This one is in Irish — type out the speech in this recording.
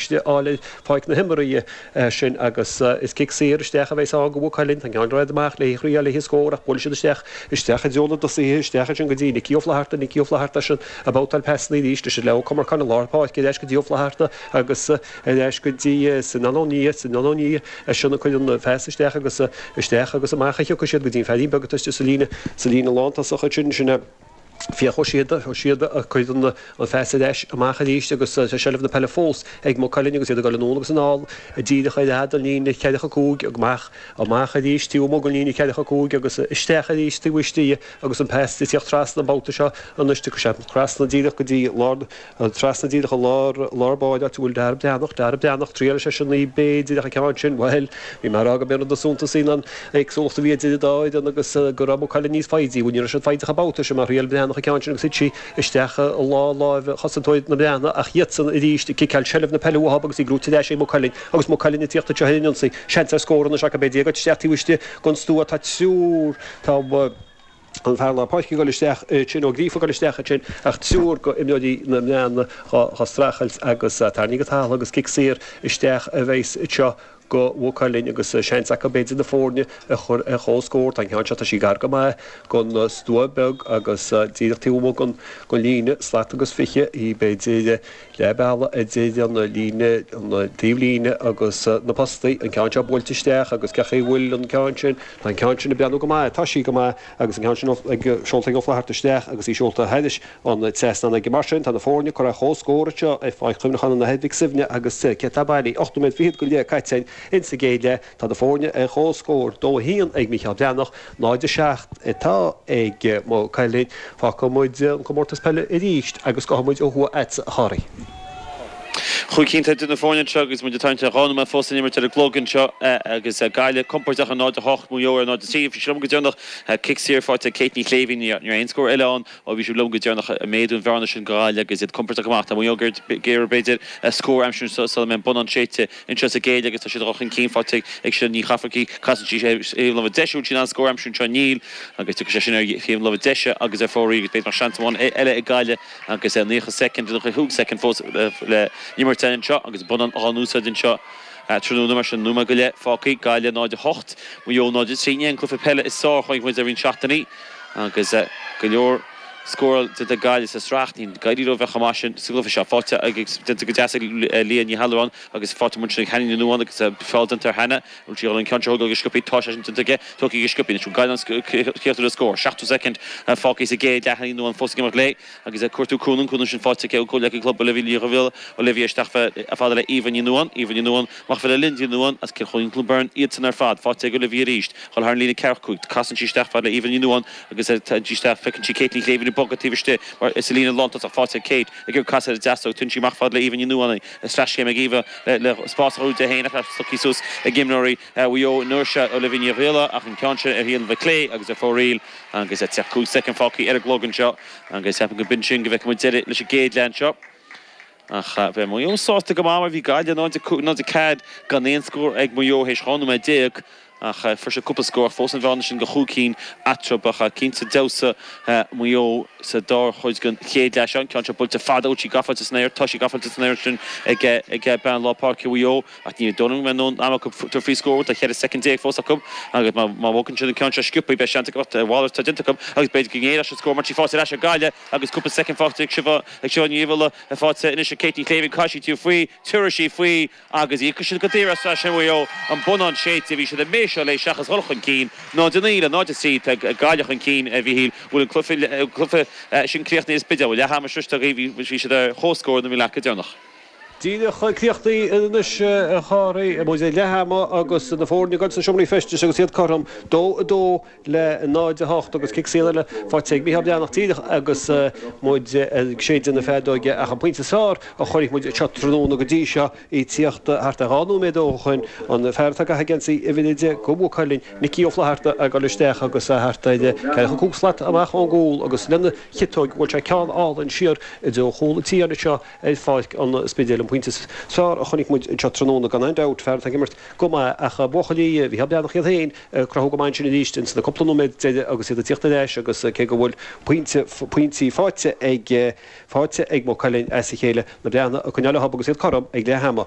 Ciste Áille Pháirc na himeartha sin agus is cic saor isteach a bheidh ann go Mhaigh Cuilinn. Tá an ceann rófhada amach le hí a thriail le haghaidh scór ach buailfidh siad isteach, isteach i dtreo na dtosaithe, isteach ansin go dtí Nicky Ó Flaithearta, Nicky Ó Flaithearta ansin ag babhtáil pasannaí arís, ansin le Ó Comarcáin i lár na páirce, ar ais go dtí Ó Flaithearta agus ar ais go dtí Sinán Ó Nia, Sinán Ó Nia ansin a chuireann an phas isteach agus isteach agus amach a thiocfaidh siad go dtí an fearín beag atá istigh sa líne, sa líne lántosach ansin, sin é. Fiach Ó Síoda, Ó Síoda a chuireann an phas ar ais amach arís agus tá seilbh na peile fós ag Maigh Cuilinn agus iad ag dul anonn agus anall díreach ar fhad an líne ceathracha cúig amach, amach arís taobh amuigh den líne ceathracha cúig agus isteach arís taobh istigh de agus an pas ag tíocht trasna an babhta seo anois trasna díreach go dtí lár na An trasna díreach i lár, lár páirce áit a bhfuil Dara Breathnach, Dara Breathnach, triaileann sé sin í, b'fhéidir, ach an ceann sin, bhuel, bhí mé a rá go mba díol suntais í an éagsúlacht a bhí idir an dá fhoireann agus go raibh Maigh Cuilinn níos foighidí, bhuel, ní raibh siad foighdeach an babhta sin mar thriail Breathnach an ceann sin agus thit sí isteach i lár láimhe chosantóir na mBreathnach ach iadsan arís ag ciceáil seilbh na peile uathab agus í gnóite ar ais ag Maigh Cuilinn agus Maigh Cuilinn ag tíocht anseo ar an ionsaí, seans ar scór anois acu b'fhéidir isteach taobh istigh den stua tá triúr, tá. an fear lár páirce ag gul isteach ansin ó gríofa gul isteach ansin ach triúr go imreoirí na mbreathnach dhá dhá strachailt agus tairníodh go talamh é agus cic saor isteach a bheas anseo go mhaigh cuilinn agus seans acu b'fhéidir na foirne a chur ar comhscór tá an ceann seo tá sí gar go maith gon stua beag agus díreach taobh amuigh gon gon líne slat agus fiche í b'fhéidir leath bealaigh idir an líne, an taobhlíne agus na postaí, an ceann seo buailte isteach agus cén chaoi a bhfuil an ceann sin, tá an ceann sin ag breathnú go maith, tá sí go maith agus an ceann sin seolta ag Ó Flaithearta isteach agus í seolta thairis an trasnán aige. Mar sin, tá na foirne curtha ar comhscór anseo ar pháirc chuimhneacháin an Athar Mhic Suibhne agus céard atá bailithe, ocht nóiméad fichead go leith caite insa gcéad leath. Tá na foirne ar chomhscór, 2-1 ag Mícheál Breathnach, 0-7 atá ag Maigh Cuilinn. Fágfaidh muid an comórtas peile arís agus gabhfaidh muid ó thuaidh chugatsa, a Chárthaigh. Cúig cinn atá idir na foirne anseo agus muid ag tarraingt ar dhá nóiméad fós le n-imirt ar an gclog anseo agus Gaillimh compordach ar 0-8, Maigh Eo ar 0-3. Bhí sibh liom go deireanach cic saor faighte ag Kate Ní Shléibhín, ní raibh aon scór eile ann ó bhí sibh liom go deireanach. Méadú an bhearna sin go Gaillimh agus iad compordach amach. Tá Maigh Eo ag iarraidh b'fhéidir scór a aimsiú sula mbeidh an bonnán séidte anseo sa gcéad leath agus tá siad a chur chun cinn faighte ag seo Ní Cheafarcaigh casann sise thaobh láimhe deise bhfuil sí in ann scór a aimsiú anseo Níl agus tiocfaidh sé sin ar thaobh láimhe deise agus ar fóraoil agus b'fhéidir nach seans amháin eile ag Gaillimh agus nócha soicind ochtó cúig soicind fós le n-imirt anseo agus bonnán in úsáid anseo tráthnóna mar sin nóiméad go leith fágtha Gaillimh 0, 8, Maigh Eo 0, 3 in aon cluiche peile i sár-chraobh Mhuire le roinnt seachtainí agus go leor. scór déanta ag Gaillimh sa sraith, ní Gaillimh a bheadh amach sin sa gcluiche seo. Fáilte déanta go deas ag Leah Ní hAllmhuráin agus faighte anois ag Hannah Ní Nuáin agus feall déanta ar Hannah nuair sí a dhul an ceann seo a thógáil go sciopthaí. Tá sé sin déanta aici, tógtha aici sciopthaí anois. Gaillimh an céaduaire scór, seachtó soicind fágtha sa gcéad leath, Ní Nuáin fós ag imeacht léi agus cuartú cúnaimh, cúnaimh sin faighte aici ó chomhghleacaí club Olivia Ní Dhuibhghiolla, Olivia isteach fad le Eva Ní Nuáin, Eva Ní Nuáin, amach fad le Lynsey Ní Nuáin as Cill Choirín Clonberne, iadsan ar fad faighte ag Olivia arís, dhul thar an líne ceathracha cúig, casann sí isteach fad le Eva Ní Nuáin, Agus tagann sí isteach feiceann sí Kate Ní Shléibhín ag bogadh taobh istigh mar is a líne lántosach faighte ag Kate ag iarraidh casadh ar deasóg. Tugann sí amach fad le Eva Ní Nuáin agus sleaschéim ag Eva le spás a chruthú di fhéin ach slogthaí suas ag imreoirí Mhaigh Eo i ndoirse Olivia Ní Dhuibhghiolla ach an ceann sin ar thaobh na láimhe clé agus ar fóraoil agus tá cúig soicind fágtha ar an gclog anseo agus ceapaim go b'in sin go bhfeicfidh muid deireadh leis an gcéad leath anseo. Ach bheadh Maigh Eo sásta go maith mar bhí Gaillimh 0-5, 0-4 gan aon scór ag Maigh Eo théis 12 nóiméad ach fuair siad cúpla scór ach fós an bhearna sin de chúig cinn eatarthu. Ach cinnte d'fheabhsaigh Maigh Eo sa dara cuid den chéad leath. Seo an ceann seo buailte fada, ach í gafa sa spéir, tá sí gafa sa spéir ansin ag bean lár páirce Mhaigh Eo ach ní dóigh liom go mbeidh am acu tabhairt faoi scór, tá 14 soicind fós acu agus má bhogann siad an ceann seo sciopthaí beidh seans acu, a mhalairt atá déanta acu agus b'fhéidir go ngéillfeadh siad scór mar tá sí faighte ar ais ag Gaillimh. Agus cúpla soicind fágtha ag Siobhán, ag Siobhán Ní Dhuibhghiolla, faighte anois ag Kate Ní Shléibhín, caithfidh sí tabhairt faoi, tabharfaidh sí faoi, agus íocfaidh siad go daor as, as sin Maigh Eo, an bonnán séidte, bhí siad ag méiseáil léi seachas dhul chun cinn, 0 9 le 0 3, tá Gaillimh chun cinn a Mhichíl, bhfuil an cluiche, cluiche sin críochnaithe, sa Spidéal, bhfuil leath ama sroichte againn, bhí siad ar comhscór nuair a bhí mé leat go deireanach. Díreach críochnaithe anois a Chárthaigh, muid ag leath ama agus na foirne ag goil sna seomraí feistis agus iad cothrom, 2 2 le 0 8 agus cic saor eile faighte ag Micheál Breathnach díreach agus muid ag séideadh na feadóige ach an pointe is fearr a chonaic muid anseo tráthnóna go dtí seo, í tíocht thart ar 2 nóiméad ó shoin, an fear atá gafa i geansaí uimhir 10 do Mhaigh Cuilinn, Micí Ó Flaithearta ag goil isteach agus thart ar ceithre chun cúig slat amach ón gcúl agus lena chiotóig bhuail sé ceann álainn siar i dtreo chúl an tí anseo ar Pháirc an Spidéil an pointe is fearr a chonaic muid anseo tráthnóna gan aon dabht, fear atá ag imirt go maith ach buachaillí Mhicheál Breathnach iad féin ag cruthú go maith ansin arís ins na cúpla nóiméad deiridh agus iad ag tíocht ar ais agus cé go bhfuil pointe, pointí faighte ag Maigh Cuilinn as a chéile, na Breathnaigh ag coinneáil leob agus iad cothrom ag leath ama.